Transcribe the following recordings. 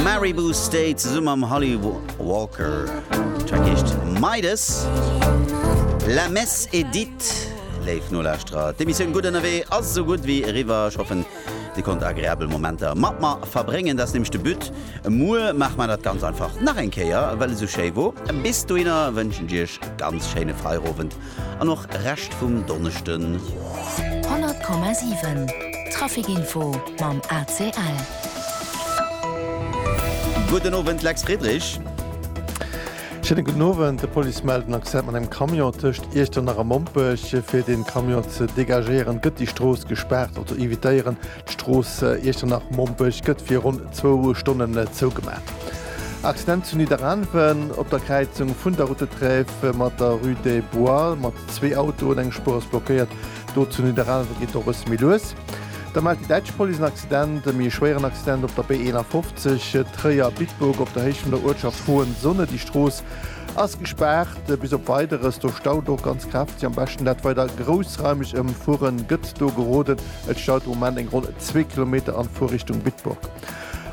Maribou State zesumme mam Holly Walker. D'Track heescht Midas. La Messe est dite, léif Nolauschterer. D'Emissioun Gutt Ënnerwee ass esou gutt wéi eriwwer. Ech hoffen, Dir konnt agreabel Momenter mat mer verbréngen. Dat ass nämlech de But. Muer maache mer dat ganz einfach nach eng Kéier, well et esou schéi wor. Bis dohinner wënschen ech Iech e ganz schéine Feierowend. An och Rescht vum Donneschden. 100,7 Traficinfo mam ACL. Gudden Owend Lex Friedrich. Schéine gudden Owend. De Police mellt en Accident mat engem Camion tëscht Iechternach a Mompech. Fir de Camion ze degagéieren, gëtt déi Strooss gespaart. Auto evitéieren. D'Strooss Iechternach-Mompech gëtt fir ronn zwou Stonnen zougemaacht. Accident zu Nidderaanwen op der Kräizung vun der Route de Trèves mat der Rue des Bois mat zwee Autoen, eng Spuer ass blockéiert. Do zu Nidderaanwen geet et och e bësse méi lues. Da mellt déi däitsch Police en Accident, e méi schwéieren Accident op der B51 Tréier-Bitburg op der Héicht vun der Uertschaft Hohenzone. Déi Strooss ass gespaart bis op Weideres. Do staut och ganz kräfteg. Am beschten dat weider groussraimeg ëmfueren gëtt do geroden. Et staut de Moment eng ronn zwee Kilometer an Fuer Richtung Bitburg.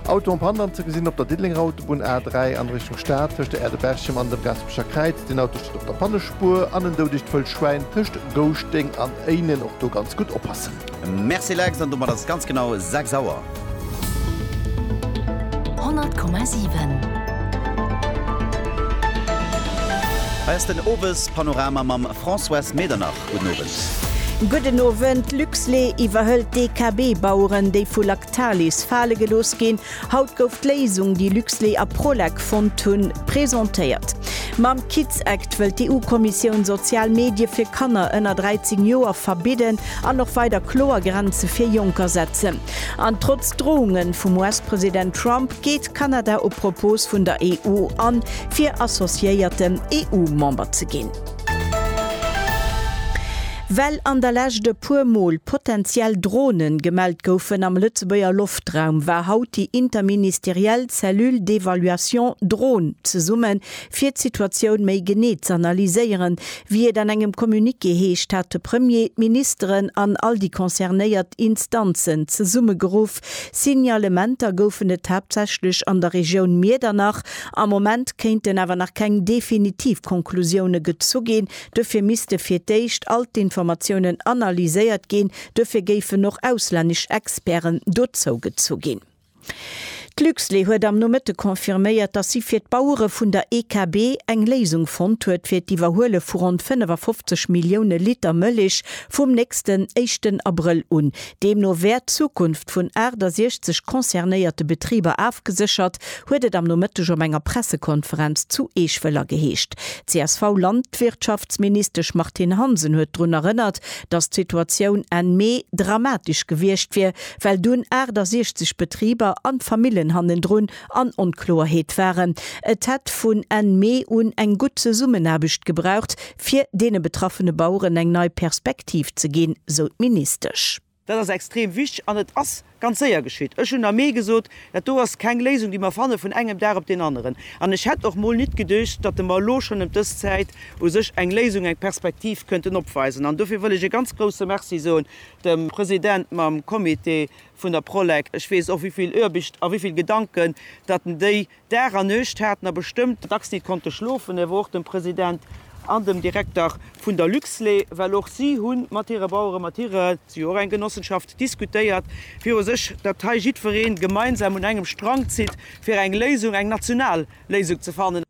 Auto am Pandan ze gesinn op der Diddelenger Autobunn A3 an Richtung Stad tëscht der Aerdeberchem an dem Gaspecher Kräiz. Deen Auto steet op der Pannespuer an en doudecht Wëllschwäin tëscht Gouschteng an Éinen. Och do ganz gutt oppassen. Merci Lex, an domat ass et ganz genau 6 Auer. 100,7. Hei ass den Owespanorama mam Françoise Medernach. Gudden Owend. Gudden Owend. Luxlé iwwerhëlt DKB-Baueren, déi vu Lactalis fale gelooss ginn. Haut gouf d'Léisung, déi Luxlé a Prolec fonnt hunn, presentéiert. Mam Kids Act wëllt d'EU-Kommissioun sozial Medie fir Kanner ënner 13 Joer verbidden an och weider kloer Grenze fir Jonker setzen. An trotz Drounge vum US-President Trump geet Kanada op Propos vun der EU an, fir associéierten EU-Member ze ginn. Well an der Lescht e puer Mol potentiell Dronen gemellt goufen am Lëtzebuerger Loftraum, war haut déi interministeriell Cellule d'évaluation Dron zesummen, fir d'Situatioun méi genee z'analyséieren. Wéi et an engem Communiqué heescht, hat de Premier d'Ministeren an all déi concernéiert Instanzen zesummegeruff, Signalementer goufen et haaptsächlech an der Regioun Miedernach. Am Moment kéinten awer nach keng definitiv Konklusioune gezu ginn. Dofir misste fir d'éischt all d'Informatiounen analyséiert ginn. Dofir géifen och auslännesch Experten dozougezu ginn. D'Luxlait huet am Nomëtte confirméiert, datt si fir d'Bauere vun der EKB eng Léisung fonnt huet fir d'Iwwerhuele vu ronn 55 Millioune Liter Mëllech vum nächsten éischten Abrëll un. Deemno wär d'Zukunft vun 68 concernéierte Betriber afgeséchert, huet et am Nomëtteg op enger Pressekonferenz zu Eeschwëller geheescht. D'CSV-Landwirtschaftsministesch Martine Hansen huet drun erënnert, datt d'Situatioun Enn Mee dramatesch gewiescht wier, well dunn 68 Betriber an d'Famillen hannendrun an Onkloerheet waren. Et hätt vun Enn Mee un eng gutt Zesummenaarbecht gebraucht, fir deene betraffene Baueren eng nei Perspektiv ze ginn, sou d'Ministesch. Dat ass extrem wichteg an et ass ganz séier geschitt. Ech hunn am Mee gesot, dat do ass keng Léisung, déi mer fanne vun engem Dag op deen aneren. An ech hätt och mol nit geduecht, datt mer elo schonn ëm dës Zäit u sech eng Léisung, eng Perspektiv kënnten opweisen. An dofir wëll ech e ganz grouse Merci soen dem President mam Comité vun der Prolec. Ech weess och, wéi vill Oarbicht a wéi vill Gedanken datt en déi Dag a Nuecht haten a bestëmmt dacks nit konnte schlofen, awer och dem President an dem Direkter vun der Luxlait, well och si hu mat hire Baueren, mat hire, si hu och eng Genossenschaft, diskutéiert viru sech, datt hei jiddweree gemeinsam un engem Strang zitt, fir eng Léisung, eng national Léisung ze fannen.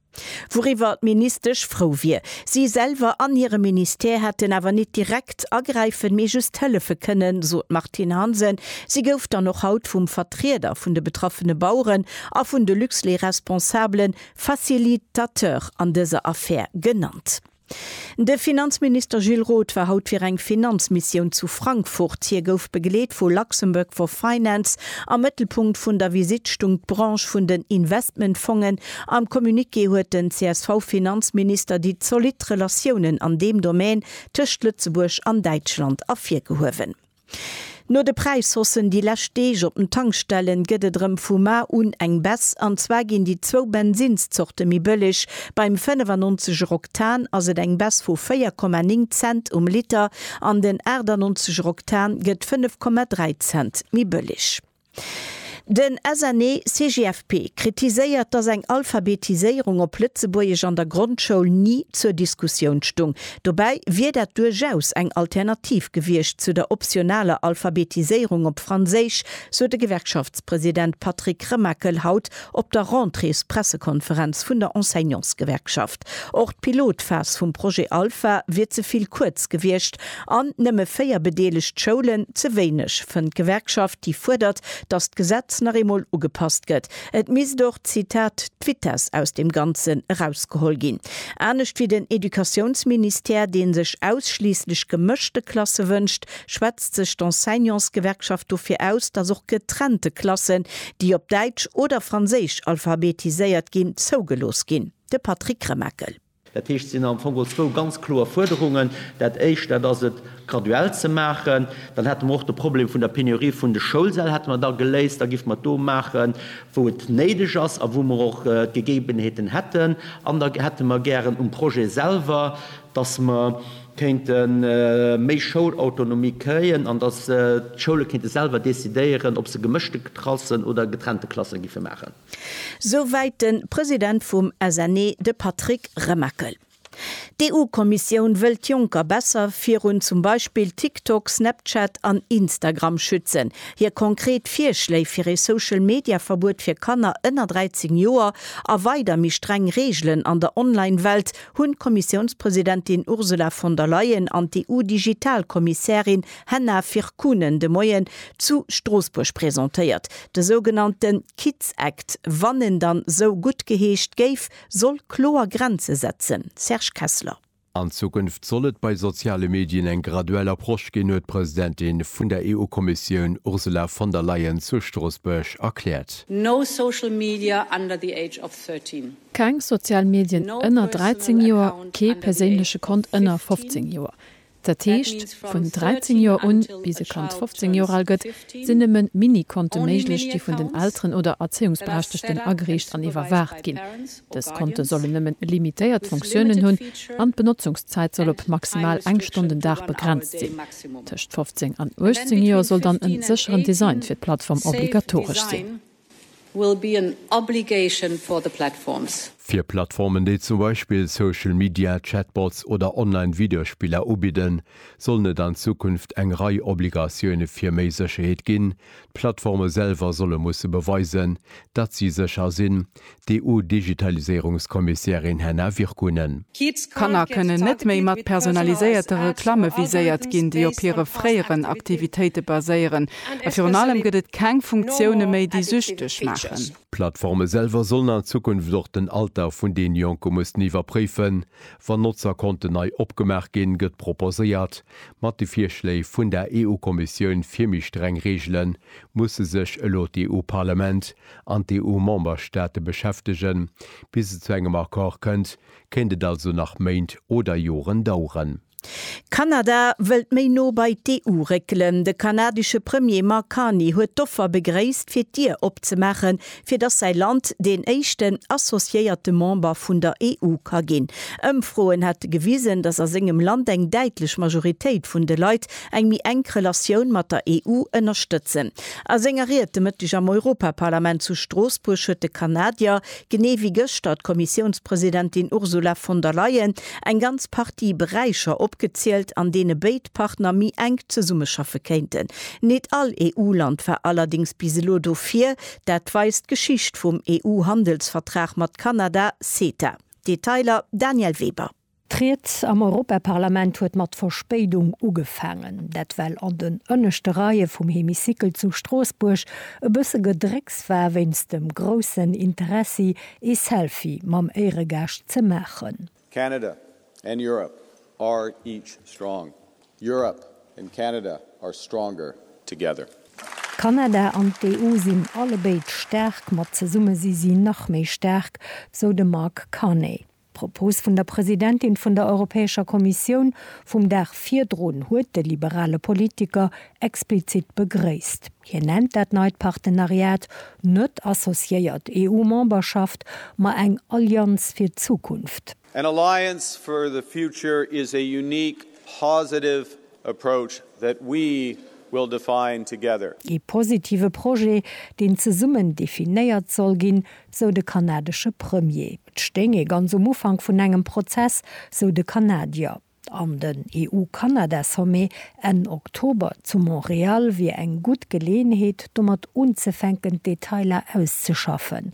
Wouriwwer d'Ministesch frou wier. Si selwer an hire Ministère hätten awer nit direkt agräifen, mee just hëllefe kënnen, sot d'Martine Hansen. Si gouf dann och haut vum Vertrieder vun de betraffene Baueren a vun de Luxlait-Responsabele Facilitateur an dëser Affär genannt. De Finanzminister Gilles Roth war haut fir eng Finanzmissioun zu Frankfurt. Hie gouf begleet vu Luxembourg for Finance. Am Mëttelpunkt vun der Visitt stung d'Branche vun den Investmentfongen. Am Communiqué huet den CSV-Finanzminister déi zolidd Relatiounen an deem Domän tëscht Lëtzebuerg an Däitschland ervirgehuewen. No de Präishossen déi lescht Deeg op den Tankstellen gëtt et erëm vu mar un eng Baisse. An zwar ginn déi zwou Bensinnszorte méi bëlleg. Beim 95 er Oktan ass et eng Baisse vu 4,9 Cent um Liter an den 98 er Oktan gëtt 5,3 Cent méi bëlleg. Den SNE-CGFP kritiséiert, datt eng Alphabetiséierung op Lëtzebuergesch an der Grondschoul ni zur Diskussioun stung. Dobäi wier dat duerchaus eng Alternativ gewiescht zu der optionaler Alphabetiséierung op Franséisch, sot de Gewerkschaftspresident Patrick Remakel haut op der Rentréespressekonferenz vun der Enseignantsgewerkschaft. Och d'Pilotphas vum Projet Alpha wier ze vill kuerz gewiescht an nëmme véier bedeelegt Schoulen ze wéineg, fënnt d'Gewerkschaft, déi fuerdert, datt d'Gesetz nach eemol ugepasst gëtt. Et misst och, Zitat, d'Vitess aus dem Ganzen erausgeholl ginn. Anescht wéi den Educatiounsministère, dee sech ausschliisslech gemëschte Klasse wënscht, schwätzt sech d'Enseignantsgewerkschaft dofir aus, datt och getrennte Klassen, déi op Däitsch oder Franséisch alphabetiséiert ginn, zougelooss ginn. De Patrick Remakel. Dat heescht, et sinn am Fong geholl zwou ganz kloer Fuerderungen. Dat Éischt, dat ass et graduell ze maachen. Dann hätte mer och de Problem vun der Penurie vun de Schoulsäll hätte mer da geléist. Da géife mer et do maachen, wou et néideg ass a wou mer och d'Gegebenheeten hätten. An da hätte mer gären um Projet selwer, dass mer kéinte méi Schoulautonomie kréien an dass d'Schoule kéinte selwer decidéieren, ob se gemëschte Klassen oder getrennte Klasse géife maachen. Souwäit de President vum SNE, de Patrick Remakel. D'EU-Kommissioun wëll d'Jonker besser virun zum Beispill TikTok, Snapchat an Instagram schützen. Hir konkret Virschléi fir ee Social-Media-Verbuet fir Kanner ënner 13 Joer a weider méi streng Reegelen an der Online-Welt hunn d'Kommissiounspresidentin Ursula von der Leyen an d'EU-Digital-Kommissärin Henna Virkkunen de Moien zu Stroossbuerg presentéiert. De sougenannte Kids Act, wann en dann sou guttgeheescht géif, soll kloer Grenze setzen, Serge Kessler. An Zukunft soll et bei soziale Medien eng graduell Approche ginn, huet d'Presidentin vun der EU-Kommissioun Ursula von der Leyen zu Stroossbuerg erkläert. No social media under the age of 13. Keng sozial Medien ënner 13 Joer, kee perséinleche Kont ënner 15 Joer. Dat heescht, vun 13 Joer un, bis e Kand 15 Joer al gëtt, sinn nëmme Mini-Konte méiglech, déi vun den Elteren oder Erzéiungsberechtegten agereecht an iwwerwaacht ginn. Dës Konte sollen nëmmen limitéiert Fonctiounen hunn an d'Benotzungszäit soll op maximal eng Stonn den Dag begrenzt sinn. Tëscht 15 an 18 Joer soll dann e sécheren Design fir d'Plattform obligatoresch sinn. will be an obligation for the platforms. Fir Plattformen, déi zum Beispill Social Media, Chatbots oder online Videospiller ubidden, sollen et an Zukunft eng Rei Obligatioune fir méi Sécherheet ginn. D'Plattforme selwer solle musse beweisen, datt si sécher sinn, d'EU-Digitaliséierungskommissärin Henna Virkkunen. Kanner kënnen net méi mat personaliséierte Reklamme viséiert ginn, déi op hire fréieren Aktivitéite baséieren. A virun allem gëtt et keng Funktioune méi, déi süchteg maachen. D'Plattforme selwer sollen an Zukunft och den Alter vun den Jonke mussen iwwerpréifen, wann Notzerkonten nei opgemaach ginn, gëtt proposéiert. Mat de Virschléi vun der EU-Kommissioun fir méi streng Reegelen musse sech elo d'EU-Parlament an d'EU-Memberstaate beschäftegen. Bis et zu engem Accord kënnt, kéint et also nach Méint oder Joren daueren. Kanada wëllt méi no bei d'EU réckelen. De kanadesche Premier Mark Carney huet d'Offer begréisst, fir d'Dier opzemaachen, fir datt säi Land deen éischten associéierte Member vun der EU ka ginn. Ëmfroen hätte gewisen, datt a sengem Land eng däitlech Majoritéit vun de Leit eng méi enk Relatioun mat der EU ënnerstëtzen. A senger Ried de Mëtteg am Europaparlament zu Stroossbuerg huet de Kanadier, genee wéi gëschter d'Kommissiounspresidentin Ursula von der Leyen, eng ganz Partie Beräicher opgezielt, an deene béid Partner méi enk zesummeschaffe kéinten. Nit all EU-Land war allerdéngs bis elo dofir. Dat weist d'Geschicht vum EU-Handelsvertrag mat Kanada, CETA. Detailer, Danièle Weber. D'Ried am Europaparlament huet mat Verspéidung ugefaangen. Dat well an den ënneschte Reie vum Hemicycle zu Stroossbuerg e bësse Gedrécks war wéinst dem groussen Interessi ee Selfie mam Éieregaascht ze maachen. Canada and Europe are each strong. Europe and Canada are stronger together. Kanada an d'EU sinn allebéid staark, mat zesumme si si nach méi staark, sou de Mark Carney. D'Propos vun der Presidentin vun der Europäescher Kommissioun vum Dag virdrun huet de liberale Politiker explizit begréisst. Hien nennt dat neit Partenariat net associéiert EU-Memberschaft, ma eng Allianz fir d'Zukunft. An alliance for the future is a unique, positive approach that we will define together. Ee positive Projet, deen zesummen definéiert soll ginn, sou de kanadesche Premier. Et stéing ee ganz um Ufank vun engem Prozess, sou de Kanadier. An den EU-Kanada-Sommet Enn Oktober zu Montreal wier eng gutt Geleeënheet, domat unzefänken, d'Detailer auszeschaffen.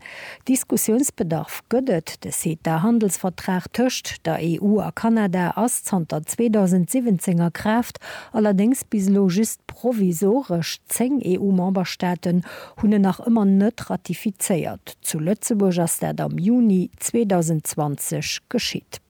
Diskussiounsbedarf gëtt et, De CETA-Handelsvertrag tëscht der EU a Kanada ass zanter 2017 a Kraaft, allerdéngs bis elo just provisoresch. Zéng EU-Memberstaaten hunn en nach ëmmer net ratifizéiert. Zu Lëtzebuerg ass dat am Juni 2020 geschitt.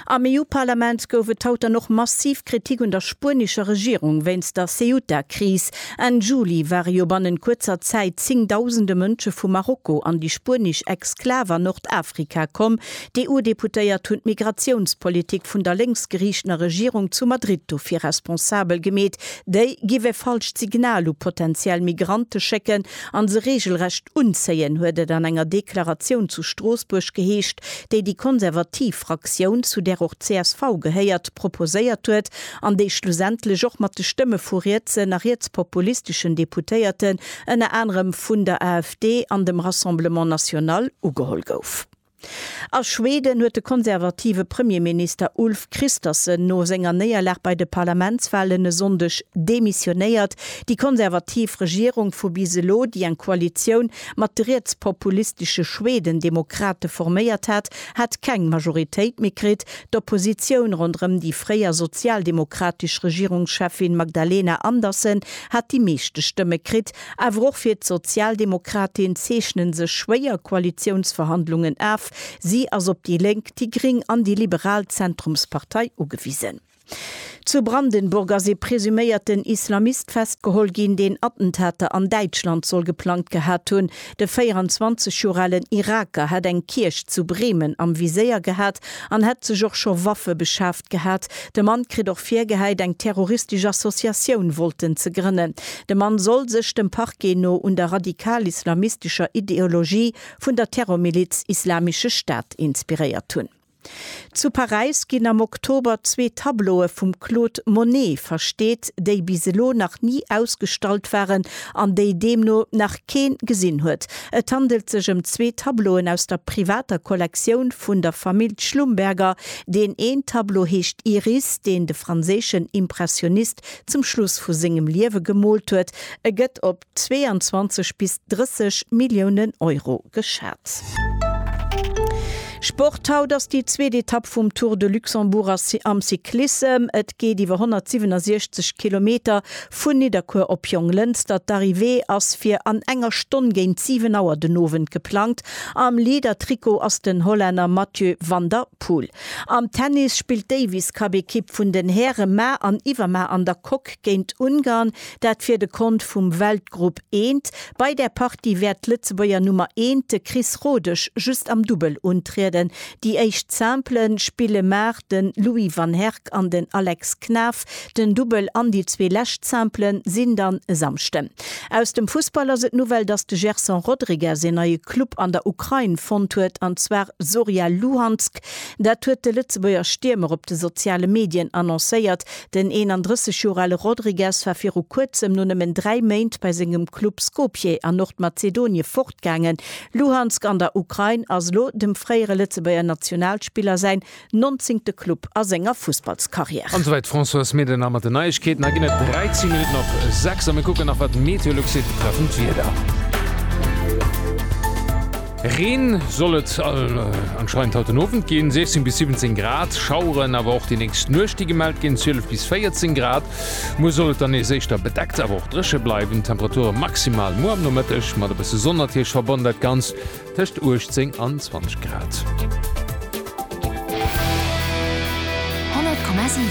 Am EU-Parlament gouf et haut dann och massiv Kritik un der spuenescher Regierung wéinst der Ceuta-Kris. Enn Juli ware jo bannent kuerzer Zäit zéngdausende Mënsche vu Marokko an déi spuenesch Exklav an Nordafrika komm. D'EU-Deputéiert hunn d'Migratiounspolitik vun der lénksgeriichtener Regierung zu Madrid dofir responsabel gemeet. Déi giff e falscht Signal u potentiell Migrante schécken an se regelrecht unzéien, huet et an enger Deklaratioun zu Stroossbuerg geheescht, déi déi konservativ Fraktioun, zu där och csv gehéiert, proposéiert huet an déi schlussendlech och mat de Stëmme vu rietsen a rietspopulisteschen Deputéierten, ënner anerem vun der AfD an dem Rassemblement National, ugeholl gouf. A Schweden huet de konservative Premierminister Ulf Kristersson no senger Néierlag bei de Parlamentswalen e Sonndeg demissionéiert. Déi konservativ Regierung vu bis elo, déi eng Koalitioun mat de rietspopulistesche Schwedendemokrate forméiert hat, hat keng Majoritéit méi kritt. D'Oppositioun ronderëm déi fréier sozialdemokratesch Regierungscheffin Magdalena Andersson hat déi meeschte Stëmme kritt. Awer och fir d'Sozialdemokratin zeechnen sech schwéier Koalitiounsverhandlungen af. Si ass op déi Lénk, déi Gring an déi liberal Zentrumspartei ugewisen. Zu Brandenburg ass ee presuméierten Islamist festgeholl ginn, deen Attentater an Däitschland soll geplangt gehat hunn. De 24 Joer alen Iraker hätt eng Kierch zu Bremen am Viséier gehat an hätt sech och scho Waffe beschaf. Gehat. De Mann kritt och virgehäit, eng terroristesch Associatioun wollten ze grënnen. De Mann soll sech, dem Parquet no, un der radikal-islamistescher Ideologie vun der Terrormiliz Islamische Staat inspiréiert hunn. Zu Paräis ginn am Oktober zwee Tableaue vum Claude Monet versteet, déi bis elo nach ni ausgestallt waren an déi deemno nach kee gesinn huet. Et handelt sech ëm zwee Tableauen aus der privater Kollektioun vun der Famill Schlumberger, Deen een Tableau heescht Iris, deen de franséischen Impressionist zum Schluss vu sengem Liewe gemoolt huet. E gëtt op 22 bis 30 Milliounen Euro geschat. Sport, Haut ass déi zweet Etapp vum Tour de Luxembourg am Cyclissem. Et geet iwwer 167 Kilometer vun Nidderkuer op Jonglënster. D'Arrivée ass fir an enger Stonn géint 7 Auer den Owend geplangt. Am Leader-Trikot ass den Hollänner Mathieu van der Poel. Am Tennis spillt d'Davis-Cup-Ekipp vun den Häre ma an iwwerma an der Coque géint Ungarn, dat fir de Kont vum Weltgrupp I. Bei där Partie wäert d'Lëtzebuerger Nummer eent, de Chris Rodesch, just am Dubbel untrieden. Déi éischt Simple spille mar de Louis van Herk an den Alex Knaff den Dubbel an déi zwee lescht Simplen sinn dann e Samschden. Aus dem Fussball ass et d'Nouvelle, dass de Gerson Rodrigues een neie Club an der Ukrain fonnt huet, an zwar Zorya Luhansk. Dat huet de Lëtzebuerger Stiermer op de soziale Medien annoncéiert. Den 31 Joer ale Rodrigues war viru kuerzem no nëmmen dräi Méint bei sengem Club Skopje an Nordmazedonie fortgaangen. Luhansk an der Ukrain ass elo dem fréiere Lëtzebuerger Nationalspiller säin Nonzéngte Club a senger Fussballskarriär. An souwäit d'Françoise Medena mat den Neiegkeeten. Hei ginn et 13 Minutten op 6 a mir kucken nach wat d'Meteolux seet betreffend d'Wieder. Reen soll et anscheinend haut den Owend ginn, 16 bis 17 Grad, Schaueren awer och déi nächst Nuecht déi gemellt ginn, 12 bis 14 Grad. Muer soll et dann nees éischter bedeckt awer och dréche bleiwen, Temperature maximal muer am Nomëtteg mat e bësse Sonn natierlech verbonnen. Dat Ganzt Tëscht 18 an 20 Grad. 100,7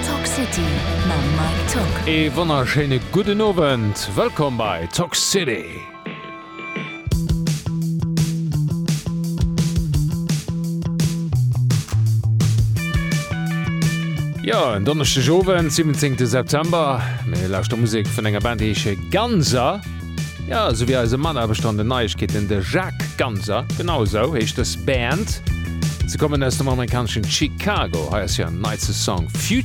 Talk City mam Mike Tock. Ee wonnerschéine gudden Owend, wëllkomm bei Talk City! Jo, en Donneschdegowend, 17 September. Mir lauschter Musek vun enger Band, déi heesche Ganser. Jo, esou wéi eise Mataarbechter an den Neiegkeeten, de Jacques Ganser. Genau esou heescht dës Band. Se kommen aus dem amerikaneschen Chicago. Hei ass hiren neitste Song Future.